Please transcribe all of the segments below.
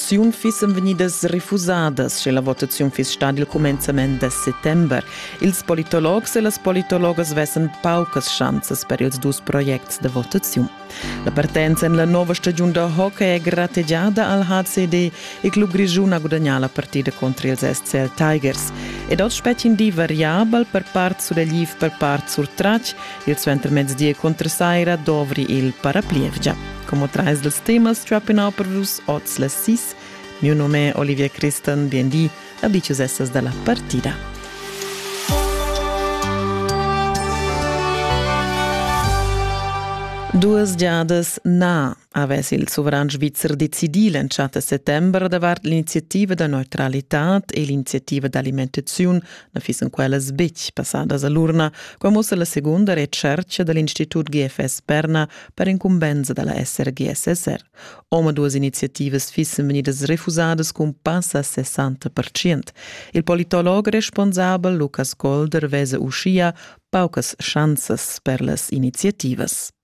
votaziun fissen vegnidas refusadas, sche la votaziun fiss stada il cumenzament da settember. Ils politologs e las politologas vessen paucas schanzas per ils dus projects de votaziun. La partenza en la nova stagiun da hockey è grategiada al HCD. Il club grischun ha gudagnà la partida contro ils SCL Tigers. Ed oz spetg in di variabel per part sudagliv, per part surtratg Il suentermezdi e cuntrasaira dovri il paraplievgia. Como trais dels temas trapping out per vus oz las sis. Mio nome è Olivia Christan, bienvenue a Dices Essas dalla partida. Duas giadas na avess il sovran svizzer decidì l'entschatta settember davart l'iniziativa da neutralitad e l'iniziativa d'alimentaziun na fissen quellas betg passadas a l'urna, qua mussa la segunda retschertga da l'Institut GFS Perna per incumbensa da la SRGSSR. Omaduas iniziativas fissen vegnidas refusadas cun passa 60%. Il politolog responsabel Lukas Golder vese uschia paucas chanzas per las iniziativas.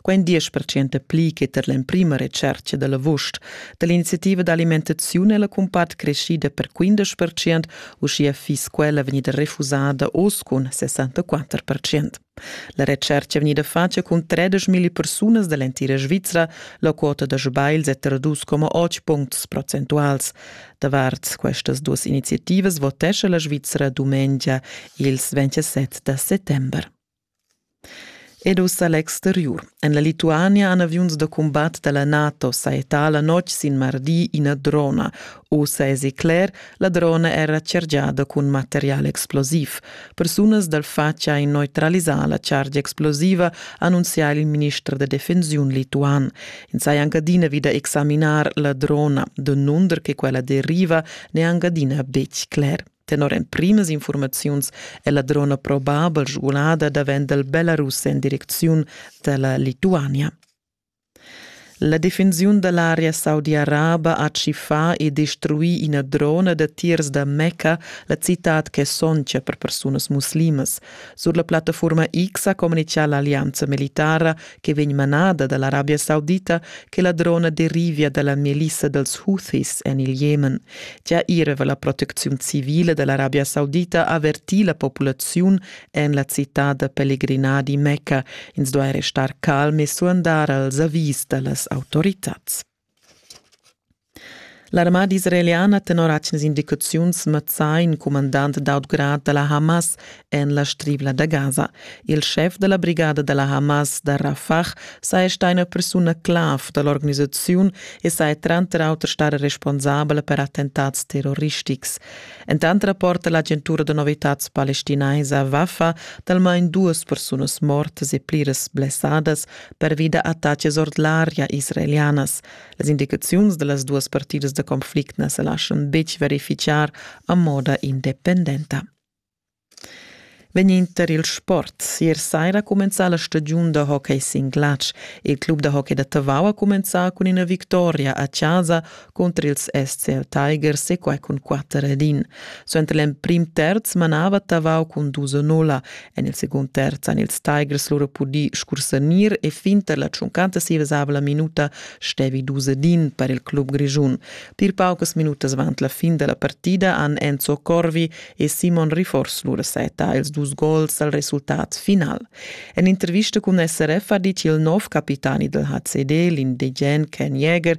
quai in 10 pli che tar l'emprima retschertga da l'avust da l'iniziativa d'alimentaziun è la cumpart creschida per 15 uschia fiss quella vegnida refusada oz cun 64 La retschertga è vegnida fatga cun 13.000 persunas da l'entira Svizra. La quota da sbagls è tra 2,8 puncts procentuals. Davart questas duas iniziativas votescha la Svizra dumengia ils 27 da settembre. Ed ussa l'exteriur. En la Lituania han aviuns da cumbat da la NATO sajettà la notg sin mardi ina drona. Ussa èsi cler, la drona era chargiada cun material explosiv. Persunas dal fatg ha neutralisà la chargia explosiva, annunzia il minister da defensiun lituan. Ins haja anc adina vid da examinar la drona, denunder che quella deriva n'è anc adina betg cler. Tenor emprimas informaziuns è la drona probabel sgulada davent dal Belarus en direcziun da la Lituania. La defensiun da l'area saudi-araba ha tschiffà e destruì ina drona da tirs da Mecca, la citad che soncia per persunas muslimas. Sur la plattaforma X ha communitgà l'allianza militara che vegn manada da l'Arabia Saudita che la drona derivia da la melissa dals Houthis en il Jemen. Gia ier va la protecziun civile da l'Arabia Saudita avertir la populaziun en la citad da pellegrinà di Mecca. Ins duai restar calm e suandar als avis da las autoritads. L'armada israeliana tenor atgnas indicaziuns mazzà in cumandant d'aut grad da la Hamas en la Strivla da Gaza. Il schef da la brigada da la Hamas da Rafah saja stà ina persuna clav da l'organisaziun e saja tranter auter stata responsabla per attentats terroristics. Entant rapporta l'agentura da novitads palestinaisa Wafa d'almain duas persunas mortas e pliras blessadas pervi da attacas ord l'aria israelianas. Las indicaziuns da las duas partidas da conflict na sa laschan betg verifichar a moda independenta. Venind tar il sport. Ier saira ha cumenzà la stagiun da hockey sin glatsch. Il club da hockey da Tavau ha cumenzà cun ina victoria a chasa Cunter ils SCL Tigers e quai cun 4 ed in. Suenter l'emprim terz manava Tavau cun dus a nulla. En il secund terz han ils Tigers loro pudì scursanir e finter la tschuncantasivesabla minuta stevi dus ed in per il club grischun. Pir paucas minutas avant la fin da la partida han Enzo Corvi e Simon Rifors lura seta ils dus gols al resultat final. En intervista cun SRF ha dit il nov capitani del HCD, l'indigen Ken Jäger,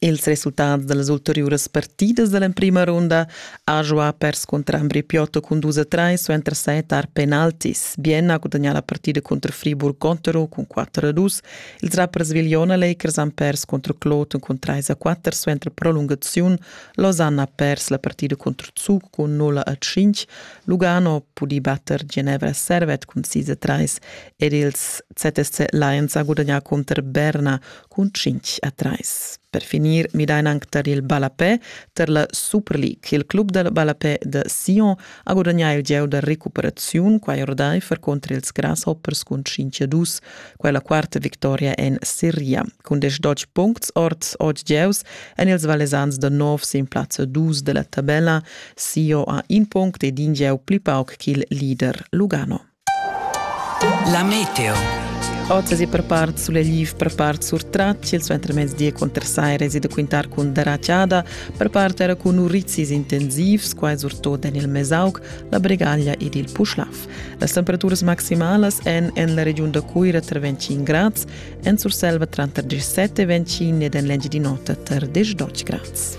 Ils resultats da las ulteriuras partidas da l'emprima runda ha giuà perscunter Ambri Piotto cun dus a trais suenter set tar penaltis. Bienna ha gudagnà la partida cunter Friburg Gontero cun quatter a dus. Ils rappers Vigliona Lakers han pers contro Kloten cun trais a quatter suenter prolungaziun. Losanna ha pers la partida contro Zug cun null a cinc. Lugano ha pudì batter Genevra Servet cun sis a trais ed ils ZSC Lions ha gudagnà contro Berna cun 5 a 3. Per finir midain anc tar il ballapè tar la Super League. Il club dal ballapè da Sion ha gudagnà il gieu da recuperaziun quai ordaifer contra ils Grasshoppers cun 5 a 2, quella quarta victoria en Serie. Cun 10 puncts ord 8 gieus èn ils Valesans da nov sin plazza 2 da la tabella. Sion ha in punct ed in gieu pli pauc ch'il leader Lugano. La meteo. Ozas e per part sulegliv, per part surtratg, il suentermezdi e contrasai resi da quintar cun daraciada, per part era cun urizis intensivs, quai surtot en il Mesauc, la Bregaglia ed il Puschlav. Las temperaturas maximalas èn en la regiun da Cuira tra 25 grads, en Surselva tranter 17 e 25 ed en l'Engiadin'Ota tra 10 12 grads.